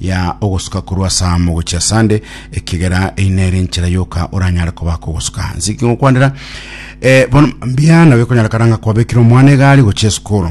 ya ogosuka korwa ase amo gochia ase ande, ekegera eyi nere enchera yoka oranyare kobaka ogosuka. Nse ki ngokwanera? Eh, bono mbia nabo ekonyarekana ng'a kwabekire omwana egari gochia esukuru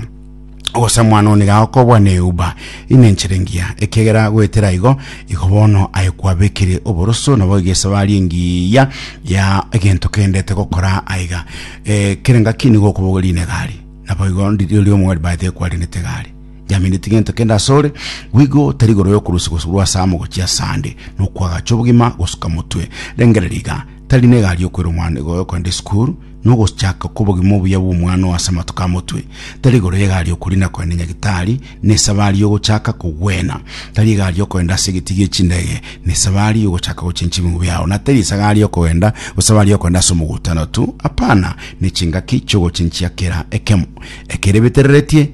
ogosa mwana one iga okobwa ne uba ine enchera engiya ekegera goetera igo igo bono aye kwabekire oboroso nabo iga esabari engiya ya egento kendete gokora aiga eh, kere ngaki nigo okobogoria ine egari nabo igo ndi- riria omogari baete ekwarenete egari Yameneti gento kende asore, wigo tari igoro yokorusi gose rwa asamo gochia asande, nokwagacha obogima gosuka motwe. Rengereria iga, tari ne egari yokwera omwana igo yokogenda esukuru, nogochaka kobogima obuya bw'omwana oo ase amatuko a motwe. Tari igoro y'egari yokorina kogenda nyagitari, ne esabari yogochaka kogwena. Tari egari yokogenda ase egeti gie chindege, ne esabari yogochaka gochencha ebingo biao. Na tari esagari yokogenda, esabari yokogenda ase omogutano tu, apana, ne chingaki chiogochenchia kera ekemo ekere betereretie.